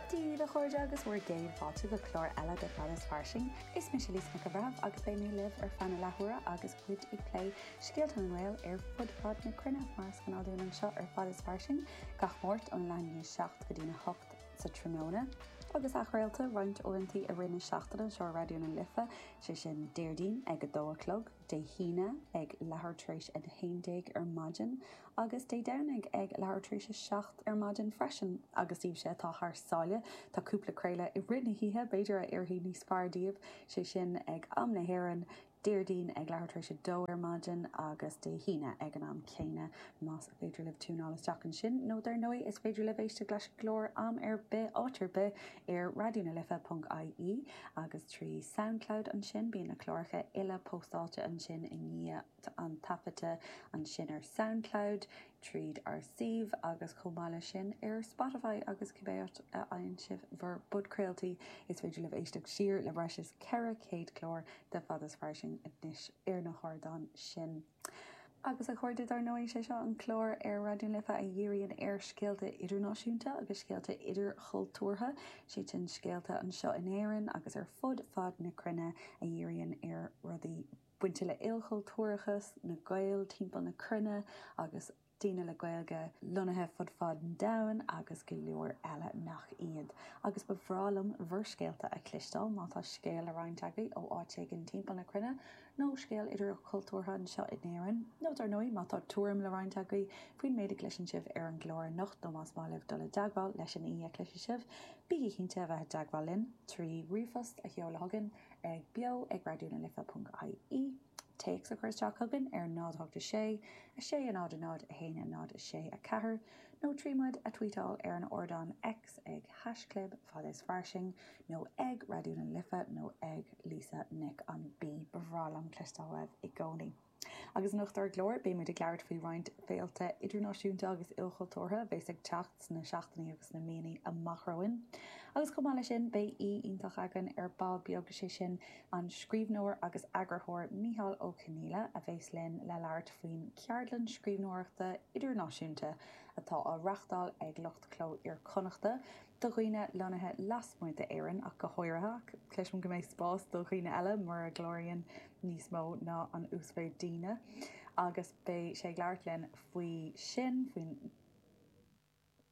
Dia daoibh a chairde agus bhur gcéad fáilte go clár eile de Fad is Fairsing. Is mise Lisa Nic an Bhreithimh agus beidh mé libh ar feadh na leathuaire agus muid ag plé scéalta na nGael ar fud fad na cruinne, mar is gnáth dúinn anseo ar Fad is Fairsing gach Máirt ón leath i ndiaidh 7 go dtí'n 8 sa tráthnóna. Agus athchraolta roinnt uaireantaí i rith na seachtaine anseo ar Raidió na Life, sé sin Déardaoin ag a dó a chlog, Dé hAoine ag leathuair tar éis a 11 ar maidin agus Dé Domhnaigh ag leathuair tar éis a seacht ar maidin freisin. Agus daoibhse atá thar sáile, tá cúpla craoladh i rith na hoíche b'fhéidir a oirfidh níos fearr daoibh, sé sin, ag am na hÉireann, Déardaoin ag leathuair tar éis a dó ar maidin agus Dé hAoine ag an am céanna. Más féidir libh tiúnáil isteach ansin, nó dar ndóigh is féidir libh éisteacht leis an gclár am ar bith, áit ar bith, ar Raidió na Life ponc IE agus trí Soundcloud ansin. Bíonn na cláracha uile póstáilte ansin i ndiaidh an taifeadta ansin ar Soundcloud, tríd ár suíomh agus chomh maith leis sin ar Spotify agus cibé áit a fhaigheann sibh bhur bpodchraoltaí is féidir libh éisteacht siar le breis is 400 clár de Fad is Fairsing anois ar na hardáin sin. Agus a chairde, dar ndóigh, is é seo an clár ar Raidió na Life a dhíríonn ar scéalta idirnáisiúnta agus scéalta idirchultúrtha, is é sin, scéalta anseo in Éirinn agus ar fud fad na cruinne a dhíríonn ar rudaí bainte le ilchultúrachas, na Gaeil timpeall na cruinne agus. daoine le Gaeilge lonnaithe fud fad an domhain agus go leor eile nach iad. Agus ba bhreá liom bhur scéalta a chloisteáil, má tá scéal le roinnt agaibh ó áit éigin timpeall na cruinne, nó scéal idirchultúrtha anseo in Éirinn, nó dar ndóigh má tá tuairim le roinnt agaibh faoin méid a chloiseann sibh ar an gclár anocht nó más maith libh dul i dteagmháil leis an aoi a chloisfidh sibh, bígí cinnte a bheith i dteagmháil linn trí ríomhphost a sheoladh chugainn ag beo ag Raidió na Life ponc IE. Téacs a chur isteach chugainn ar 08 6 6 a 0 a 0 a 1 a 0 6 4 nó trí muid a tweetáil ar an ardán X ag haischlib Fad is Fairsing nó ag Raidió na Life nó ag Lisa Nic an B. Ba bhreá liom cloisteáil uaibh i gcónaí. Agus anocht ar an gclár, beidh muid ag labhairt faoi roinnt féilte idirnáisiúnta agus ilchultúrtha a bheas ag teacht sna seachtainí agus sna míonna amach romhainn. Agus chomh maith leis sin, beidh aoi iontach againn ar ball beag, sé sin An scríbhneoir agus eagarthóir Micheál Ó Conghaile a bheas linn le labhairt faoin gceardlann scríbhneoireachta idirnáisiúnta atá á reachtáil ag lucht Chló Iar-Chonnachta do dhaoine lonnaithe lasmuigh d'Éirinn ach go háirithe, ach cloisim go mbeidh spás do dhaoine eile mura gcláraíonn níos mó ná an uasmhéid daoine. Agus beidh sé ag labhairt linn faoi sin, faoin.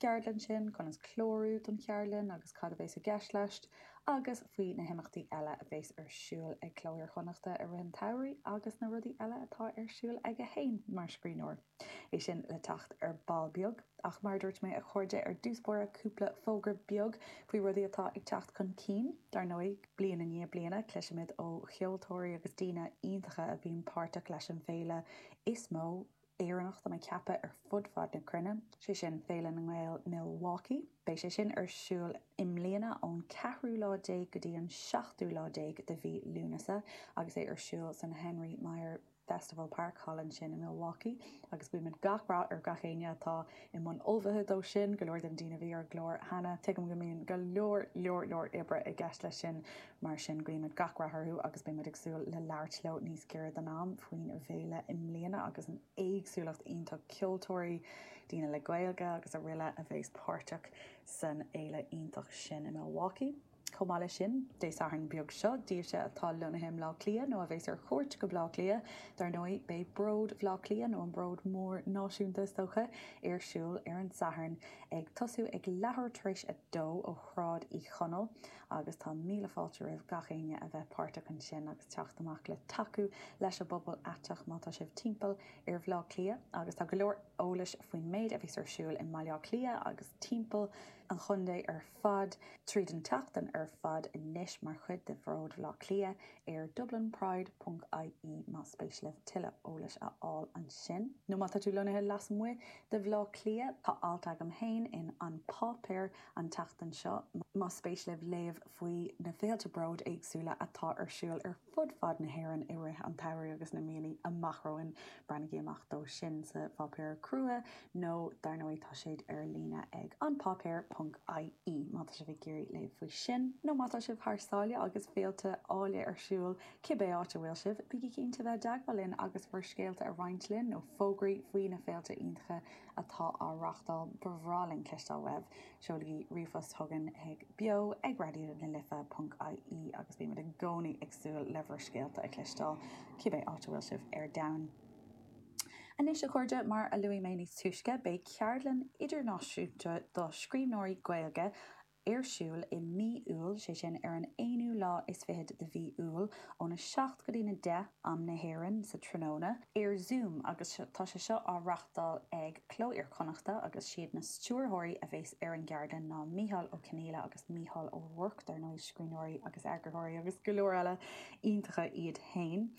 gceardlann sin, conas clárú don cheardlann agus cad a bheas i gceist leis, agus faoi na himeachtaí eile a bheas ar siúl ag Cló Iar-Chonnachta i rith an tsamhraidh agus na rudaí eile atá ar siúl aige féin mar scríbhneoir. É sin le teacht ar ball beag, ach mar a dúirt mé a chairde ar dtús báire cúpla fógra beag faoi rudaí atá ag teacht chun cinn. Dar ndóigh, bliain i ndiaidh bliana cloisimid ó cheoltóirí agus daoine iontacha a bhíonn páirteach leis an bhféile is mó, Éireannach dá mba ceaptha ar fud fad na cruinne, sé sin Féile na nGael Milwaukee. Beidh sé sin ar siúl i mbliana ón ceathrú lá déag go dtí an seachtú lá déag de mhí Lúnasa agus é ar siúl san Henry Maier Festival Park, thall ansin i Milwaukee. Agus guímid gach rath ar gach éinne atá i mbun ullmhaithe dó sin, go leor de na daoine a bhí ar an gclár cheana. Tuigim go mbíonn go leor, leor, leor oibre i gceist leis sin. Mar sin, guímid gach rath orthu agus beidh muid ag súil le labhairt leo níos giorra don am faoin bhféile i mbliana agus an éagsúlacht iontach ceoltóirí, daoine le Gaeilge agus aroile a bheas páirteach san fhéile iontach sin i Milwaukee. Chomh maith leis sin, Dé Sathairn beag seo, daoibhse atá lonnaithe i mBleá Cliath nó a bheas ar chuairt go Bleá Cliath, dar ndóigh, beidh Bród Bhleá Cliath, nó an Bród Mór Náisiúnta is dócha, ar siúl ar an Satharn, ag tosú ag leathuair tar éis a dó ó Shráid Uí Chonaill. agus tá míle fáilte roimh gach éinne a bheith páirteach ansin agus teacht amach le tacú leis an bpobal aiteach má tá sibh timpeall ar Bhaile Átha Cliath agus tá go leor eolais faoin méid a bheas ar siúl i mBaile Átha Cliath agus timpeall an chontae ar fad tríd an tseachtain ar fad anois mar chuid de Bhród Bhaile Átha Cliath ar Dublin Pride ponc IE más spéis libh tuilleadh eolais a fháil ansin. Nó má tá tú lonnaithe lasmuigh de Bhaile Átha Cliath, tá alt agam féin in An Páipéar an tseachtain seo. Más spéis libh léamh faoi na féilte bróid éagsúla atá ar siúl ar fud fad na hÉireann i rith an tsamhraidh agus na míonna amach romhainn, breathnaigí amach dó sin sa pháipéar crua nó dar ndóigh tá siad ar líne ag An Páipéar ponc IE má tá sibh ag iarraidh léamh faoi sin. Nó má tá sibh thar sáile agus féilte eile ar siúl, cibé áit a bhfuil sibh, bígí cinnte bheith i dteagmháil linn agus bhur scéalta a roinnt linn nó fógraí faoi na féilte iontacha atá á reáchtáil, ba bhreá linn cloisteáil uaibh! Seolaigí ríomhphost chugainn chuig beo ag raidió na life ponc ie agus beidh muid i gcónaí ag súil le bhur scéalta a chloisteáil, cibé áit a bhfuil sibh ar domhan. Anois, a chairde, mar a luaigh mé níos túisce, beidh ceardlann idirnáisiúnta do scríbhneoirí Gaeilge ar siúl i mí Iúil, sé sin ar an 21ú de mhí Iúil, ón 7 go dtí na 10 am na hÉireann sa tráthnóna, ar Zoom agus tá sé seo á reáchtáil ag Cló Iar Chonnachta agus siad na stiúrthóirí a bheas ar an gceardlann ná Micheál Ó Conghaile agus Mícheál Ó Ruairc, dar ndóigh, scríbhneoirí agus eagarthóirí agus go leor eile iontacha iad féin.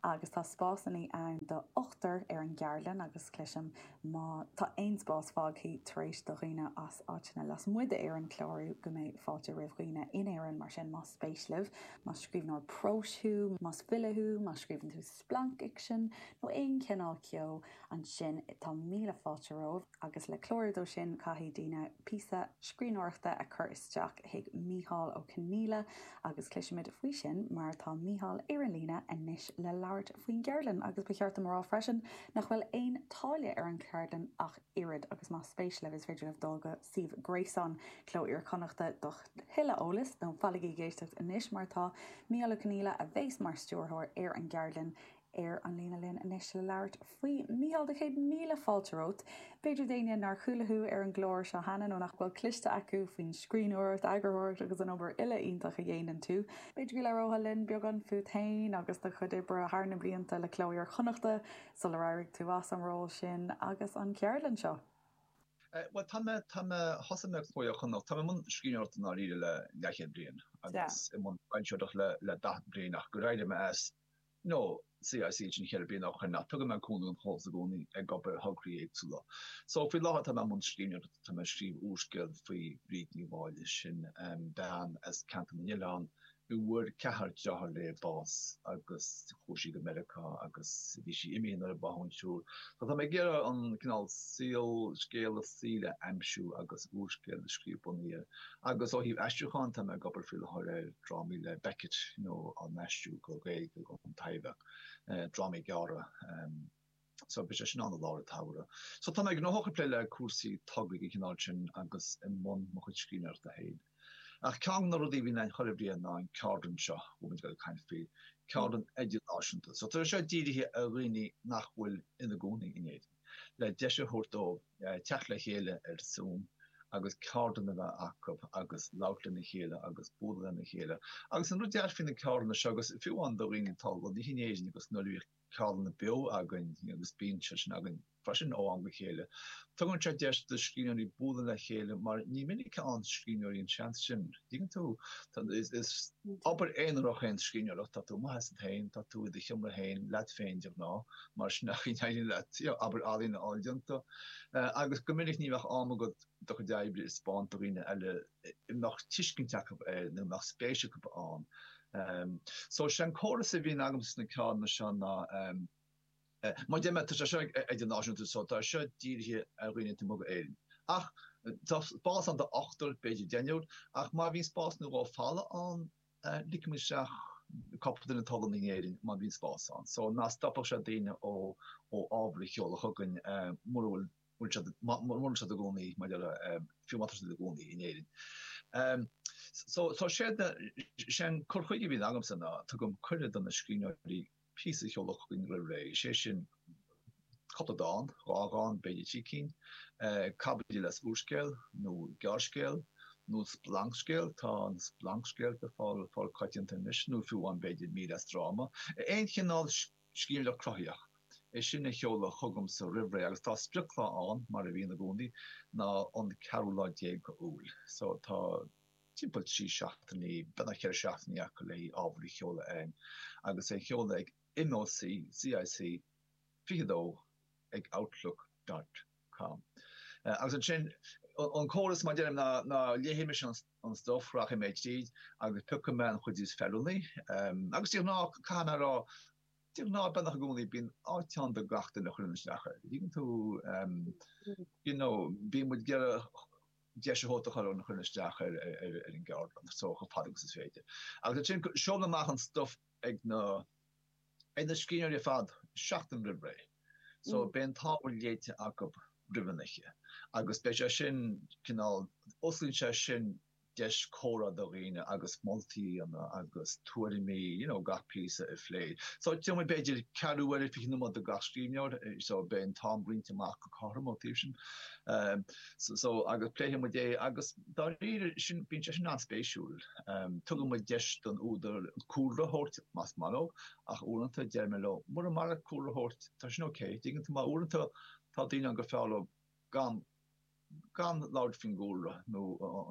Agus tá spásanna ann do ochtar ar an gceardlann agus cloisim Má tá aon spás fágthaí tar éis do dhaoine as áiteanna lasmuigh d'Éirinn clárú, go mbeidh fáilte roimh dhaoine in Éirinn, mar sin, más spéis libh, más scríbhneoir próis thú, más file thú, más scríobhann tú splancfhicsean, nó aon chineál eile, ansin tá míle fáilte romhaibh, agus le clárú dó sin caithfidh daoine píosa scríbhneoireachta a chur isteach chuig Mícheál Ó Conghaile, Agus cloisfimid faoi sin mar tá Mícheál ar an líne anois le labhairt faoin gceardlann. Agus ba cheart dom a rá freisin nach bhfuil aon táille ar an gceardlann ach oiread, agus más spéis libh is féidir libh dul go suíomh gréasáin Cló Iar-Chonnachta do thuilleadh eolais, nó fanaigí ag éisteacht anois mar tá Mícheál Ó Conghaile, a bhéas mar stiúrthóir ar an gceardlann, Ar an líne linn anois le labhairt faoi A Mhichíl céad míle fáilte romhat. B'fhéidir do dhaoine nár chuala thú ar an gclár seo cheana nó nach bhfuil cloiste acu faoin scríbhneoireacht, eagarthóireacht agus an obair uile iontach a dhéanann tú, b'fhéidir go labhróthá linn beagán fút féin agus do chuid oibre thar na blianta le Cló Iar Chonnachta sular éirigh tú as an ról sin agus an cheardlann seo á. Bhuel, tá mé, tá mé, thosaigh mé Cló Iar Chonnachta, tá mé i mbun scríbhneoireachta i ndáiríre le leathchéad bliain agus i mbun foilsitheoireachta le daichead bliain ach gur éirigh mé as ó CIC ceithre bliana ó shoin, ach tugann mé cúnamh don chomhlacht i gcónaí ag obair ar thograí éagsúla. So, faoi láthair tá mé i mbun scríbhneoireachta, tá mé ag scríobh úrscéil faoi Bhríd Ní Mháille, sin bean as Ceantar na nOileán a bhfuair ceathrar deartháir léi bás agus chuaigh sí go Meiriceá agus bhí sí imithe nuair a báthadh an triúr. So tá mé ag iarraidh an cineál saol, scéal a saoil a aimsiú agus úrscéal a scríobh bunaithe air. Agus ó thaobh aistriúcháin, tá mé ag obair faoi láthair ar drámaí le Beckett á n-aistriú go Gaeilge don Taibhdhearc, drámaí gearra. So beidh sé sin ann i lár an tsamhraidh. So tá mé gnóthach ag plé le cúrsaí tograí den chineál sin agus i mbun mo chuid scríbhneoireachta féin. Ach ceann de na rudaí a bhíonn againn chuile bhliain ná an ceardlann seo a bhfuil muid ag dul ag caint faoi, ceardlann idirnáisiúnta. So tá sé seo dírithe ar dhaoine nach bhfuil ina gcónaí in Éirinn. le deis a thabhairt dóibh teacht le chéile ar Zoom agus ceardlann a bheith acu agus labhairt lena chéile agus bualadh lena chéile. Agus an rud deas faoi na ceardlanna seo, agus fiú amháin do dhaoine atá lonnaithe in Éirinn, agus nuair a bhíodh ceardlanna beo againn, agus bíonn siad sin againn freisin ó am go chéile, tugann sé deis do scríbhneoirí bualadh le chéile mar ní minic a fhaigheann scríbhneoirí an seans sin. Bíonn tú, is obair aonarach í an scríbhneoireacht, tá tú amuigh asat féin, tá tú i do sheomra féin leat féin de ghnáth, mar sin a éiríonn leat obair ealaíne a fháil déanta, agus go minic ní bheadh deis agat do chuid oibre a thaispeáint do dhaoine eile, a mbeadh tuiscint acu air nó a mbeadh spéis acu ann. So, sé an córas a bhíonn agam sna ceardlanna seo ná. Mar a dúirt mé, tá sé seo idirnáisiúnta so tá seo dírithe ar dhaoine taobh amuigh d'Éirinn. Ach tá spás ann do ochtar, b'fhéidir deichniúr, ach má bhíonn spás nó dhó le fáil ann, ligfimid isteach cúpla duine taobh istigh d'Éirinn má bhíonn spás ann. So ná stopfadh sé daoine ó ó ábhar a sheoladh chugainn mura bhfuil bhfuil siad mura bhfuil siad ina gcónaí mar gheall ar fiú má tá siad ina gcónaí in Éirinn. So so sé an cur chuige a bhíonn agamsa ná tugaim cuireadh do na scríbhneoirí píosa a sheoladh chugainn roimh ré, is é sin cúpla dán, dhá dhán, b'fhéidir trí cinn, caibidil as úrscéal nó gearrscéal, nó splancscéal, tá an splancscéal le fáil coitianta anois, nó fiú amháin b'fhéidir mír as dráma. Aon chineál scríbhneoireacht chruthaitheach, é sin a sheoladh chugamsa roimh ré agus tá sprioclá ann, mar a bhíonn i gcónaí, ná an ceathrú lá déag d'Iúil. So, tá. timpeall trí seachtaine, beagnach ceithre seachtaine acu le ábhar a sheoladh chugainn agus é a sheoladh chuig MÓC, CIC 22 ag outlook dot com. Agus ansin, an córas, a dhéanaim ná léifidh mise an stuif, rachaidh mé tríd agus piocfaidh mé an chuid is feiliúnaí. Agus de ghnáth, caithfidh mé a rá, de ghnáth, beagnach i gcónaí, bíonn áit ann do gach duine a chuireann isteach air. An dtuigeann tú? You know, bíonn muid ag iarraidh. deis a thabhairt do gach duine a chuireann isteach ar an gceardlann so chomh fada agus is féidir. Agus ansin seolaim amach an stuif ag na ag na scríbhneoirí ar fad seachtain roimh ré. So beidh an t-ábhar léite acu roimh an oíche. Agus beidh sé sin cineál, osclaíonn sé sin deis comhrá do dhaoine agus moltaí a dhéanamh agus tuairimí you know gach píosa a phlé. So d'fhéadfadh muid b'fhéidir ceathrú uaire, 20 nóiméad do gach scríbhneoir, so beidh an t-am roinnte amach go cothrom ón taobh sin. So agus pléifidh muid é agus dáiríre sin bíonn sé sin an-spéisiúil. Tugann muid deis don údar cúlra a thabhairt, más maith leo, ach uaireanta deir mé leo, mura maith leat cúlra a thabhairt, tá sin ok, an dtuigeann tú, mar uaireanta tá daoine ann gur fearr leo gan gan labhairt faoin gcúlra nó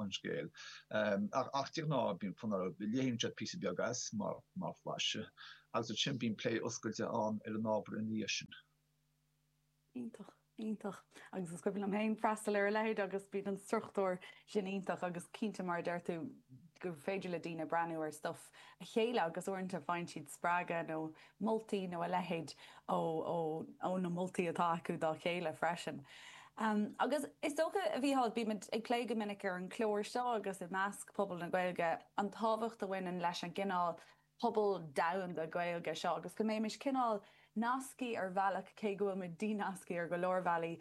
an scéal. Ach de ghnáth bíonn fonn orthu, léann siad píosa beag as mar mar mhaise agus ansin bíonn plé oscailte ann ar an ábhar ina dhiaidh sin. Iontach, iontach. Agus is cuimhin liom féin freastal ar a leithéid agus bíonn an struchtúr sin iontach agus cinnte mar a deir tú gur féidir le daoine breathnú ar stuif a chéile agus uaireanta faigheann siad spreagadh nó moltaí nó a leithéid ó na moltaí atá acu dá chéile freisin. Agus is dócha, a Mhíchíl, bímid ag plé go minic ar an chlár seo agus i measc pobal na Gaeilge an tábhacht a bhaineann leis an gcineál pobal domhanda Gaeilge seo agus go mbeimis cineál nasctha ar bhealach, cé go bhfuil muid dí-nasctha ar go leor bealaí,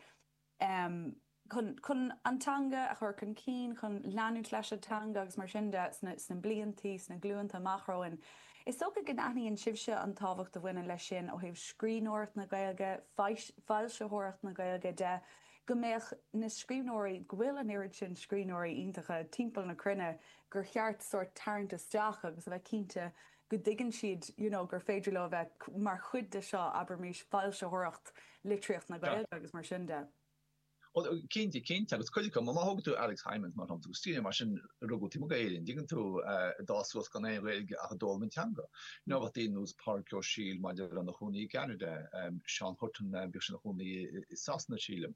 chun an teanga a chur chun cinn, chun leanúint leis an teanga agus mar sin de sna bliantaí, sna glúnta amach romhainn. Is dócha go n-aithníonn sibhse an tábhacht a bhaineann leis sin ó thaobh scríbhneoireacht na Gaeilge, foilsitheoireacht na Gaeilge de. go mbeadh na scríbhneoirí, go bhfuil an oiread sin scríbhneoirí iontacha timpeall na cruinne gur cheart sórt tarraingt isteach agus a bheith cinnte go dtuigeann siad you know gur féidir leo a bheith mar chuid de seo, abraimis, foilsitheoireacht litríocht na Gaeilge agus mar sin de. Bhuel, cinnte, cinnte, agus cuid acu, má thógann tú Alex Hijmans mar shampla, as an Ísiltír mar sin, rugadh taobh amuigh d'Éirinn, dtuigeann tú, a d'fhás suas gan aon Ghaeilge ach a d'fhoghlaim an teanga. Nó bheadh daoine nós Pádraig Ó Siadhail mar a déarfá ina chónaí i gCeanada, Seán Hutton, bhíodh sé ina chónaí i Sasana sílim.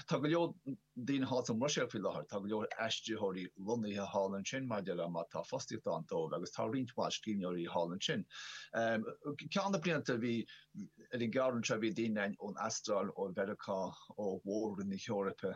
Tá go leor daoine thall sa mBruiséil faoi láthair, tá go leor aistritheoirí lonnaithe thall ansin mar a déarfá mar tá fostaíocht ann dóibh agus tá roinnt mhaith scríbhneoirí thall ansin. Ceann de na blianta bhí, ar an gceardlann seo bhí daoine ann ón Astráil, ó Mheiriceá, ó mhór-roinn na hEorpa.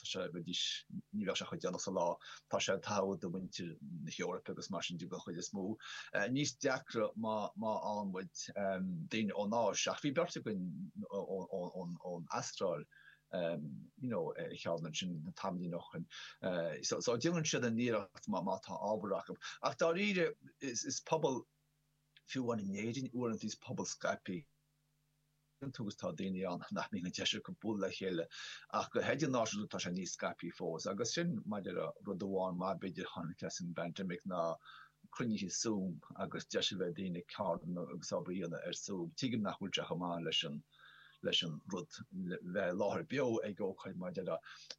Tá sé go deas, ní bheadh sé chomh déanach sa lá. Tá sé an-tairbheach do mhuintir na hEorpa agus mar sin de den chuid is mó. Níos deacra má fhanann muid, daoine ón Áis, ach bhí beirt againn ón Astráil you know ar an cheann ansin tamaillín ó shin. So déanann siad an iarracht má tá ábhar acu. Ach dáiríre is pobal, fiú amháin in Éirinn uaireanta is pobal scaipthe iontu agus tá daoine ann nach mbíonn an deis acu bualadh le chéile ach go hidirnáisiúnta tá sé níos scaipthe fós agus sin mar a déarfá rud amháin maith b'fhéidir a tháinig as an bpandemic ná cruinnithe Zoom agus deis a bheith ag daoine ceardlanna agus obair a dhéanamh ar Zoom. Tuigim nach bhfuil sé chomh maith leis an leis an rud bheith i láthair beo ag ócáid mar a déarfá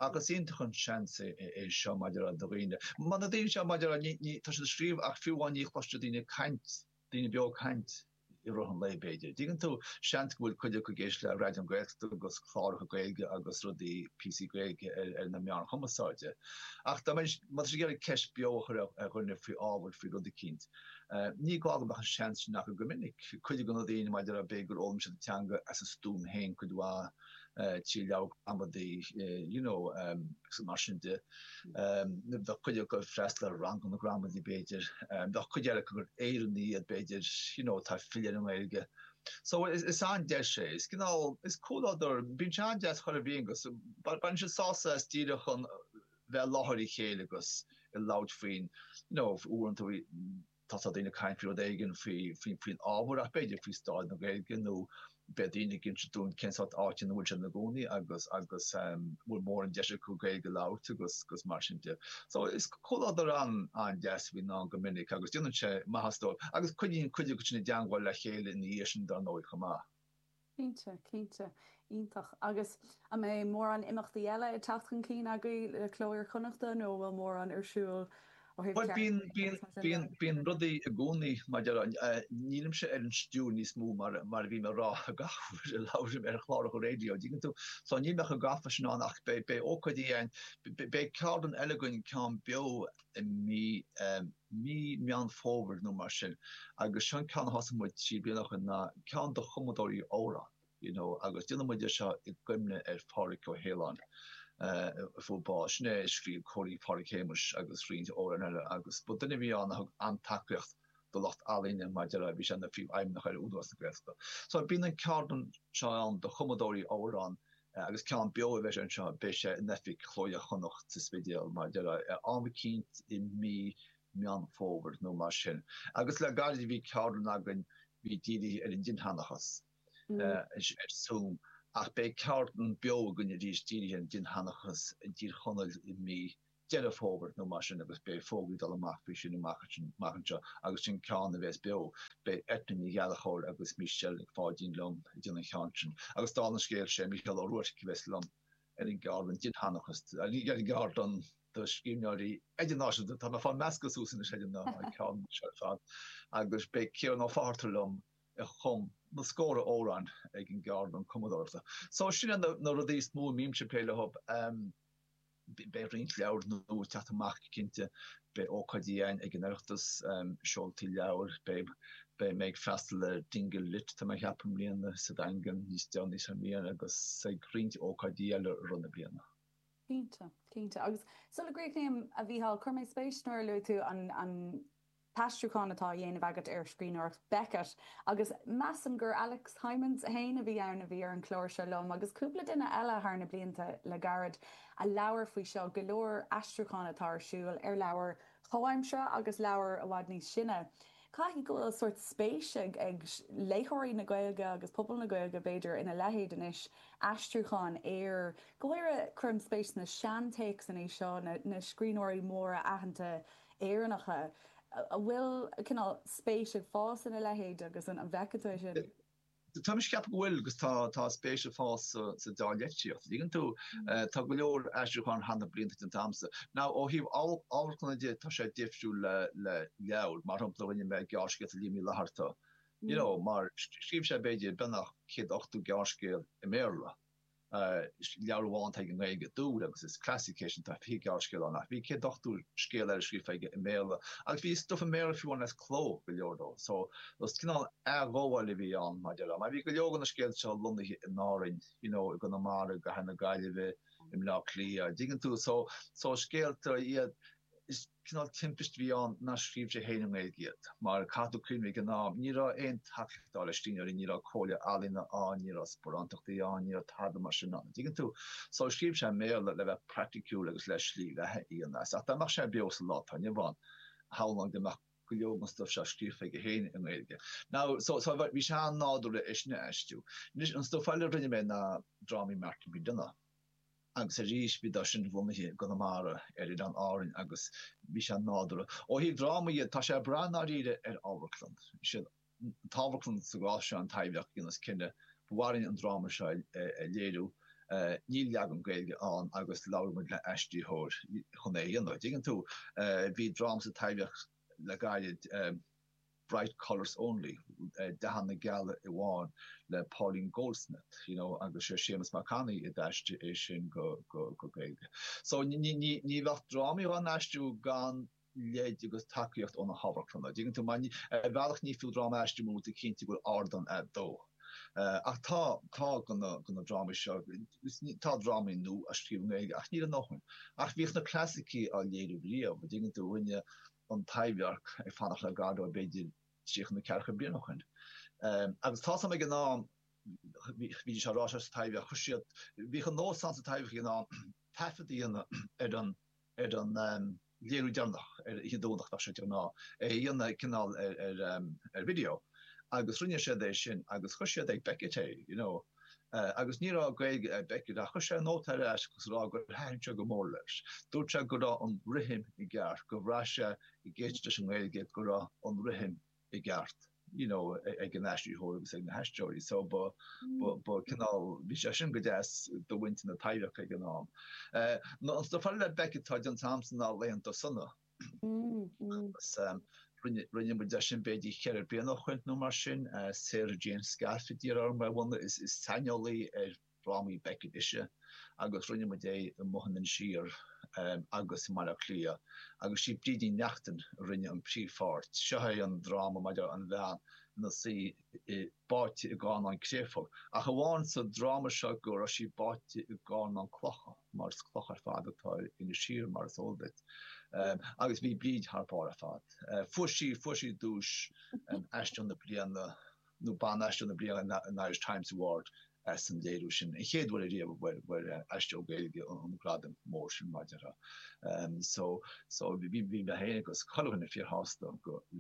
ach is iontach an seans é seo mar a déarfá do dhaoine. Mar na daoine seo mar a déarfá tá siad ag scríobh ach fiú amháin ní chloiseann siad daoine ag caint, daoine beo ag caint. i rith an lae b'fhéidir. Dtuigeann tú, seans go bhfuil cuid acu ag éisteacht le Raidió na Gaeltachta agus cláracha Gaeilge agus rudaí, píosaí Gaeilge ar na meáin chumasáide. Ach má tá muid ag iarraidh ceist beo a chur ar dhuine faoi ábhar, faoi rud eicínt, ní gá go mbeadh an seans sin acu go minic. Cuid de na daoine, mar a déarfá, b'fhéidir gur fhoghlaim siad an teanga as a stuaim féin cuid mhaith, trí leabhar gramadaí you know agus mar sin de. Bheadh cuid acu ag freastal ar ranganna gramadaí b'fhéidir. Bheadh cuid eile acu gur Éireannaigh iad b'fhéidir you know atá ag filleadh ar an nGaeilge. So is an-deis é. Is cineál, is comhluadar, bíonn sé an-deas ar a bhealach agus baineann siad sásamh as díreach a bheith i láthair a chéile agus ag labhairt faoin you know uaireanta Tá daoine ag caint faoi rud éigin faoin ábhar b'fhéidir faoi stáid na Gaeilge nó beidh daoine ag inse dúinn cén sórt áit ina bhfuil siad ina gcónaí agus an bhfuil mórán deis acu Gaeilge a labhairt agus mar sin de. So is comhluadar an-deas a bhíonn ann go minic agus déanann sé maitheas dóibh agus coinníonn cuid acu i dteangmháil le chéile ina dhiaidh sin dar ndóigh chomh maith. Cinnte, cinnte. Iontach. Agus an mbeidh mórán imeachtaí eile ag teacht chun cinn agaibh le Cló Iar-Chonnacht nó an bhfuil mórán ar siúl ó thaobh Bhuel, bíonn, ceardlanna agus mar sin de? bíonn, bíonn, bíonn rudaí i gcónaí maidir, nílimse ar an stiúir níos mó mar, mar a bhí mé ag rá gach uair a labhraím ar chláracha raidió, an dtuigeann tú? So, níl mé chomh gafa sin ann ach beidh, beidh ócáidí ann, beidh ceardlann eile againn, ceann beo, i mí, mí Meán Fómhair nó mar sin agus seo an ceann a thosaigh muid trí bliana ó shin ná ceann do chumadóirí amhrán you know agus déanann muid é seo i gcuimhne ar Phádhraic Ó hAoláin a fuair bás. Sin é a scríobh Cóilín Phádhraic Shéamuis agus roinnt amhrán eile agus ba duine a bhí ann a thug an-tacaíocht do lucht ealaíne mar a déarfá, bhí sé ina phríomhfheidhmeannach ar Údarás na Gaeltachta. So bíonn an ceardlann seo ann do chumadóirí amhrán Agus ceann beo a bheas anseo, beidh sé in oifig Chló Iar-Chonnacht sa Spidéal, mar a déarfá, am eicínt i mí Meán Fómhair nó mar sin. Agus le gairid bhí ceardlann againn bhí dírithe ar an dinnsheanchas, ar zoom, ach beidh ceardlann beo againn arís dírithe ar an dinnsheanchas i dTír Chonaill i mí Deireadh Fómhair nó mar sin agus beidh fógraí ag dul amach faoi sin amach anseo agus sin ceann a bheas beo. Beidh Eithne Ní Ghallchobhair agus Michelle Nic Pháidín liom ag déanamh an cheann sin agus dála an scéil sé Mícheál Ó Ruairc a bheas liom ar an gceardlann Dinnsheanchas ar an gceardlann do scríbhneoirí idirnáisiúnta. Tá mé ag fáil measctha suas anois ar na ceardlanna seo ar fad agus beidh Ciarán Ó Fátharta liom a chum na scórtha amhrán ag an gceardlann cumadóireachta. So sin na rudaí is mó a mbímse ag plé leo. Beidh roinnt leabhar nua ag teacht amach go cinnte. Beidh ócáidí ann ag an Oireachtas, seoltaí leabhar, beidh mé ag freastal ar Dingle Lit, tá mé a cheapadh i mbliana, sa Daingean níos déanaí sa mbliain agus ag roinnt ócáidí eile i rith na bliana. Cinnte, cinnte. Agus sula gcríochnaím, a Mhícheáil, chuir mé spéis nuair a luaigh tú an, an, t-aistriúchán atá á dhéanamh agat ar scríbhneoireacht Beckett, agus measaim gur Alex Hijmans féin a bhí ann a bhí ar an chlár seo liom, agus cúpla duine eile thar na blianta le gairid, a labhair faoi seo, go leor aistriúchán atá ar siúl ar leabhair chomhaimseartha agus leabhair i bhfad níos sine. Caithfidh go bhfuil sórt spéis ag léitheoirí na Gaeilge, agus pobal na Gaeilge b'fhéidir, ina leithéid anois, aistriúcháin ar, go háirithe, cuirim spéis sna seantéacsanna seo, na scríbhneoirí móra aitheanta, Éireannacha, an bhfuil cineál spéis ag fás ina leithéid agus an bhfeiceann tú é sin? Tá mise ag ceapadh go bhfuil agus tá spéis ag fás sa dá litríocht. Dtuigeann tú, tá go leor aistriúcháin thar na blianta déanta agamsa. Now ó thaobh amharclanna de tá sé difriúil le leabhair, mar shampla rinne mé gearrscéalta Liam Uí Fhlatharta, you know, mar scríobh sé b'fhéidir beagnach 180 gearrscéal i mBéarla. Leabhar amháin atá aige i nGaeilge, Dúil, agus is classic é sin, tá fiche gearrscéal ann ach bhí céad ochtó scéal eile scríofa aige i mBéarla agus bhí stuif i mBéarla fiú amháin as cló, go leor dó. So, is cineál athghabháil a bhí ann, mar a déarfá. Mar bhí go leor de na scéalta seo lonnaithe in Árainn, you know, i gConamara, i gCathair na Gaillimhe, i mBleá Cliath, a' dtuigeann tú? So, so scéalta iad. Is cineál timpist a bhí ann nár scríobh sé féin i nGaeilge iad, mar caithfidh tú cuimhneamh, ag an am ní raibh aon tacaíocht dá laghad do scríbhneoirí, ní raibh Comhairle Ealaíon ann, ní raibh sparántachtaí ann, ní raibh tada mar sin ann, an dtuigeann tú? So scríobh sé i mBéarla le bheith praiticiúil agus le slí bheatha a dhéanamh as. Ach dá mbeadh sé beo sa lá atá inniu ann, shamhlóinn go mbeadh go leor den stuif seo scríofa aige féin i nGaeilge. Now, so, so bhí sé an-nádúrtha é sin a aistriú. Anois, an stuif eile a rinne mé ná drámaí Martin McDonagh. agus arís bhíodar sin bunaithe i gConamara ar Oileáin Árann agus bhí sé nádúrtha. Ó thaobh drámaí dhe, tá sé ag brath ndáiríre ar an amharclann. Is é an t-amharclann sa gcás seo, an Taibhdhearc, a dhéananns cinneadh ba mhaith linn an dráma seo a léiriú. Níl leagan Gaeilge ann agus labhair muid le aistritheoir chun é a dhéanamh. An dtuigeann tú, bhí dráma sa Taibhdhearc le gairid, Bright Colours Only, Dathanna Geala Amháin, le Pauline Goldsmith, you know agus sé Séamus Mac Annaidh a d'aistrigh é sin go Gaeilge. So ní bheadh drámaí dhá n-aistriú gan lead agus tacaíocht ó na hamharclanna, dtuigeann tú mar ar bhealach ní fiú dráma a aistriú murar cinnte go bhfuil ardán agat dó. Ach tá, tá go na go na drámaí seo, tá drámaí nua á scríobh i nGaeilge ach níl a ndóthain. Ach bhíodh na clasaicigh á léiriú riamh, dtuigeann tú, rinne an Taibhdhearc ag fanacht le Godot b'fhéidir tríocha nó ceathracha bliain ó shoin. Agus tá a fhios agam ag an am, bhídís á rá seo sa Taibhdhearc, chuir siad, bhíodh an nós ann sa Taibhdhearc ag an am taifead a dhéanamh ar an léiriú deireanach ar an Domhnach, bheadh sé de ghnáth, é a dhéanamh cineál ar video. Agus rinne siad é sin agus chuir siad ag Beckett é, you know. agus ní raibh Gaeilge ag Beckett, ach chuir sé nóta ar ais agus a rá gur thaitin sé go mór leis. Dúirt sé go raibh an rithim i gceart, gur bhraith sé ag éisteacht leis an nGaeilge go raibh an rithim i gceart you know ag an aistritheoir agus ag na haisteoirí. So ba ba cineál bhí sé sin go deas do mhuintir na Taibhdheirce ag an am. An saothar le Beckett atá déanta agamsa ná Laethanta Sona. agus rinne muid é sin b'fhéidir cheithre bliana ó shoin nó mar sin. Sarah Jane Scaife a d'iarr orm é a bhunadh, is saineolaí ar dhrámaí Beckett ise, agus rinne muid é amuigh in Inis Oírr agus i mBaile Átha Cliath, agus sí Bríd Ní Neachtain a rinne an príomhpháirt. Seo é an dráma maidir an bhean ina suí báite i gcarnán créafóige, ach amháin sa dráma seo go raibh sí báite i gcarnán clocha, mar is cloch ar fad atá ar Inis Oírr, mar is eol duit. Agus bhí Bríd thar barr ar fad. Fuair sí, fuair sí duais Aisteoir na Bliana, nó Ban-Aisteoir na Bliana an Irish Times Award as an léiriú sin, an chéad uair riamh a bhfuair Aisteoir Gaeilge an gradam mór sin maidir so, so bhí mé féin agus chuile dhuine fíorshásta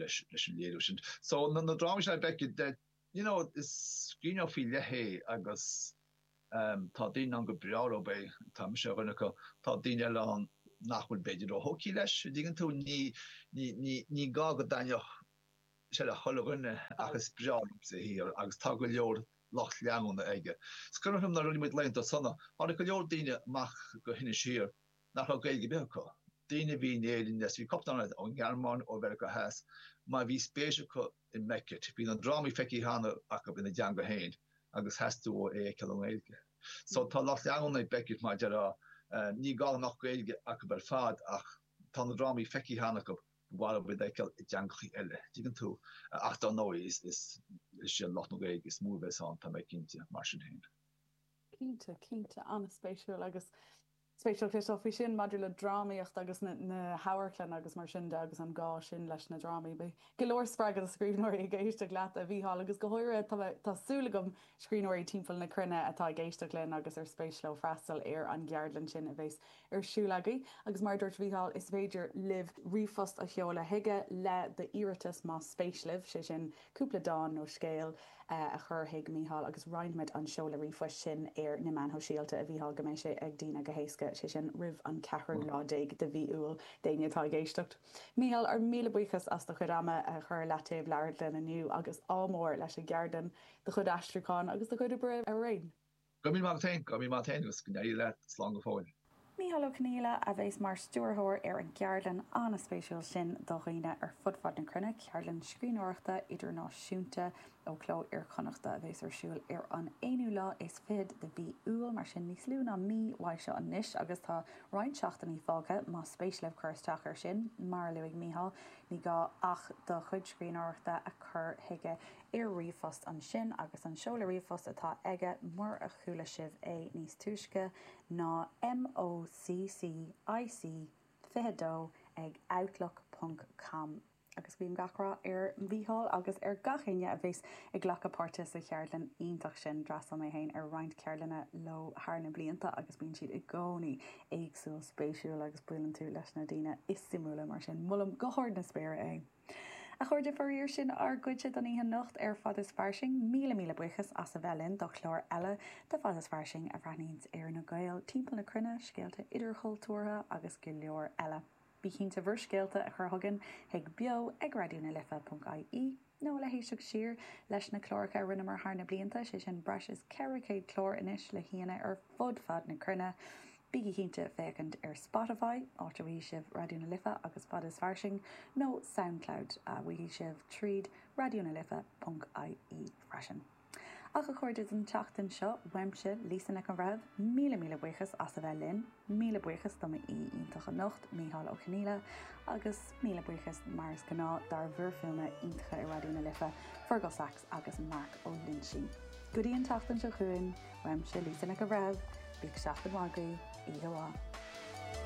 leis an léiriú sin. So na drámaí seo ag Beckett, de, you know, is scríbhneoir faoi leith é agus tá daoine ann gur breá leo é, tá mise ar dhuine acu, tá daoine eile ann nach bhfuil b'fhéidir ró-tógtha leis, an dtuigeann tú, ní, ní, ní, ní gá go dtaitneodh, sé le chuile dhuine ach is breá liomsa a shaothar agus tá go leor lucht leanúna aige. Is cuimhneach liom nuair a rinne muid Laethanta Sona, tháinig go leor daoine amach go hInis Oírr nach raibh Gaeilge ar bith acu, daoine a bhí in Éirinn le trí cupla nóiméad, ón nGearmáin, ó Mheiriceá Theas, mar bhí spéis acu i mBeckett, bhí na drámaí feicthe cheana acu ina dteanga féin agus theastaigh uathu é a fheiceáil i nGaeilge. So tá lucht leanúna ag Beckett mar déarfá, ní gá go mbeadh Gaeilge acu ar fad ach tá na drámaí feicthe cheana acu. maith leo iad a fheiceáil i dteangachaí eile, tuigeann tú. Ach dar ndóigh, is iad lucht na Gaeilge is mó a bheas ann, tá mé cinnte, mar sin féin. Cinnte, cinnte. An-spéisiúil. Agus spéisiúil cloisteáil faoi sin maidir le drámaíocht agus na hamharclann agus mar sin de agus an gá sin leis na drámaí. Beidh go leor spreagadh do scríbhneoirí ag éisteacht leat, a Mhícheáil, agus go háirithe, tá mé, tá súil agam, scríbhneoirí timpeall na cruinne atá ag éisteacht linn agus ar spéis leo freastal ar an gceardlann sin a bheas ar siúl agaibh agus mar a dúirt Mícheál is féidir libh ríomhphost a sheoladh chuige le do iarratas más spéis libh, sé sin cúpla dán nó scéal a chur chuig Mícheál agus roinnfimid an seoladh ríomhphoist sin ar na meáin shóisialta a Mhíchíl go mbeidh sé ag daoine go héasca, sé sin roimh an ceathrú lá déag de mhí Iúil d'éinne atá ag éisteacht. Mícheál, ár míle buíochas as do chuid ama a chur i leataobh labhairt linn inniu agus ádh mór leis an gceardlann, do chuid aistriúchán agus do chuid oibre araon. Go raibh míle maith agat féin, go raibh míle maith agat féin agus go n-éirí leat, slán go fóill. Mícheál Ó Conghaile a bheas mar stiúrthóir ar an gceardlann an-spéisiúil sin do dhaoine ar fud fad na cruinne, ceardlann scríbhneoireachta idirnáisiúnta ó Chló Iar-Chonnachta a bheas ar siúl ar an aonú lá is fichead de mhí Iúil, mar sin níos lú ná mí uaidh seo anois, agus tá roinnt seachtainí fágtha más spéis libh cur isteach air sin. Mar a luaigh Mícheál, ní gá ach do chuid scríbhneoireachta a chur chuige. ar ríomhphost ansin agus an seoladh ríomhphost atá aige mura a chuala sibh é níos túisce ná MOCCIC22 ag outlook ponc com. Agus guím gach rath ar Mhícheál agus ar gach éinne a bheas ag glacadh páirte sa cheardlann iontach sin. D'fhreastail mé féin ar roinnt ceardlanna leo thar na blianta agus bíonn siad i gcónaí éagsúil spéisiúil agus buaileann tú leis na daoine is suimiúla mar sin molaim go hard na spéire é. A chairde, faraor sin ár gcuidne don oíche anocht ar Fad is Fairsing. Míle míle buíochas as a bheith linn do chlár eile de Fad is Fairsing a bhreathnaíonns ar na Gaeil timpeall na cruinne, scéalta idirchultúrtha agus go leor eile. Bí cinnte bhur scéalta a chur chugainn chuig beo ag raidió na life ponc ie nó le héisteacht siar leis na cláracha a rinneamar thar na blianta, sé sin breis is 400 clár anois le haíonna ar fud fad na cruinne. Bígí cinnte féachaint ar Spotify, áit a bhfaighidh sibh Raidió na Life agus Fad is Fairsing, nó Soundcloud, a bhfaighidh sibh tríd raidió na life ponc ie, freisin. Ach, a chairde, don tseachtain seo, uaimse, Lisa Nic an Bhreithimh, míle míle buíochas as a bheith linn, míle buíochas do m'aoi iontach anocht, Mícheál Ó Coinníolla, agus míle buíochas, mar is gnáth, dár bhfir fuaime iontacha i Raidió na Life, Fearghal Saxe. agus Marc Ó Loinsigh. Go dtí an tseachtain seo chugainn, uaimse Lisa Nic a' Bhreithimh, bíodh seachtain mhaith agaibh, oíche mhaith.